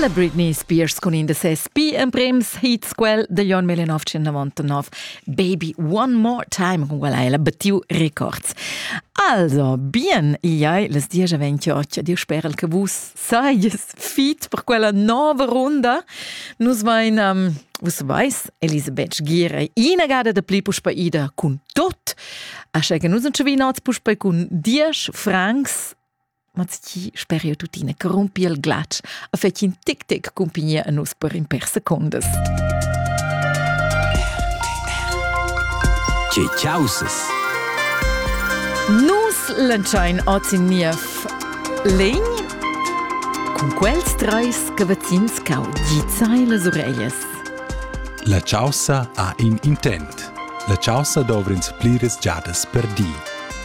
La Britney Spears cun in da ses pli emprems hits, quel The John Malianoff 199, Baby One More Time, con quella è la battiu records. Also, bien, iai, les dies aventio occhio, Dio sperel che vus saies fit per quella nova runda. Nus vain, um, vus vais, Elisabeth Gire, inagada da pli puspa ida cun tot, ascha che nus non ci vinats puspa cun 10 francs Ma tgi sper jeu tuttina corrumpi il glatsch a fetg in tic tic cumpignia a nus per in per secondas. Tge causes? Nus lenschain oz in niev legn cun quels treis che vecins cau dizai las ureglias. La causa ha in intent. La causa dovrins pliras giadas per di.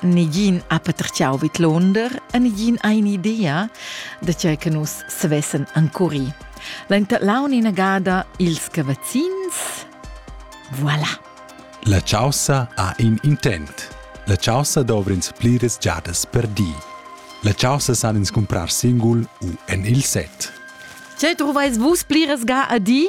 Negin ha patertgau vidlonder e negin ha in'idea da tgei che nus savessen encuri. L'enterlaun inagada ils cavazzins. Voilà. La caussa ha in intent. La caussa dovr'ins pliras giadas per di. La caussa san ins comprar singul u en il set. Tgei truvais vus pliras ga a di?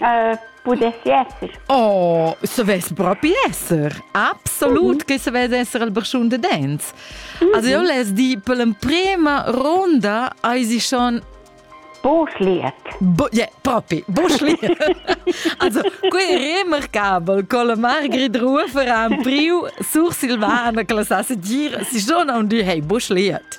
Uh, pudessi esser. Oh, savess propi esser. Absolut mm -hmm. che savess esser il barschun de dents. Mm -hmm. Also io les di per l'emprema ronda hai sie schon Boschliet. Bo yeah, propi, Boschliet. also, quei è remarcabel con la Margrit Rufer ha priu sur Silvana che la sa dir, si schon on du hey Boschliet.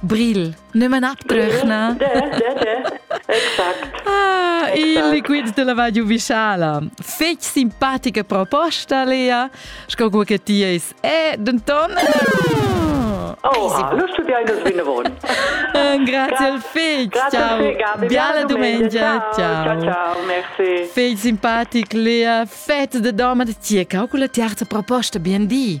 Bril, ne manat brechna. Exact. Ah, il liquid della vadiu visciala. Fec simpatica proposta, Lea. Sco quel che ti eis. E, denton... Oh, lo studiai nos vinavon. Grazie al Fig. Ciao. Biala domenica. Ciao. Ciao, ciao, merci. Fig simpatic, Lea. Fett de doma de tia. Calcula ti arta proposta, bien di.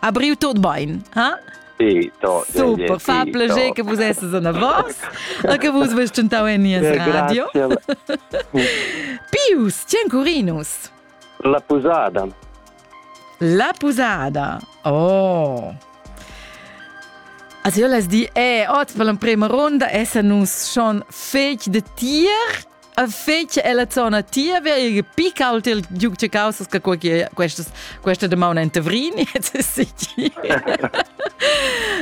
Ha briu tut bein, ha? Sì, to, Super, fa piacere che vos esses a vos e che vos vest tentau en nies radio. Pius, c'è Curinus? La pusada. La pusada. Oh. Also io les di, eh, oz per l'emprema ronda essa nus schon fetg de tier a fetg ella zona tia via e picca ault il giug che causas che questas questa demana en Tavrin jetzt ist sie die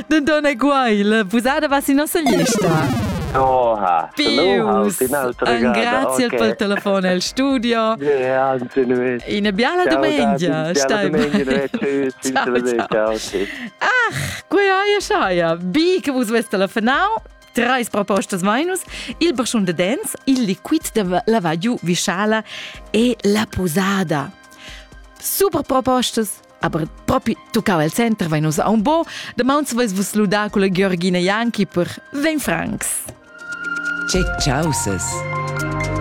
Den Donna Guail, busada was in nossa lista. Oha, Pius, un grazie okay. per telefono al studio. Una biala domenica, stai bene. Ciao, ciao. Ach, qui hai, sai, bi che vus veste la final, Trais propostas mainus, il barschun de dents, il liquid de lavadiu visciala e la posada. Super propostas, aber propi tuccava il center, vai nus a un bo, de mauns vais vus ludar con la Georgina Janki per 20 francs. Che ciauses!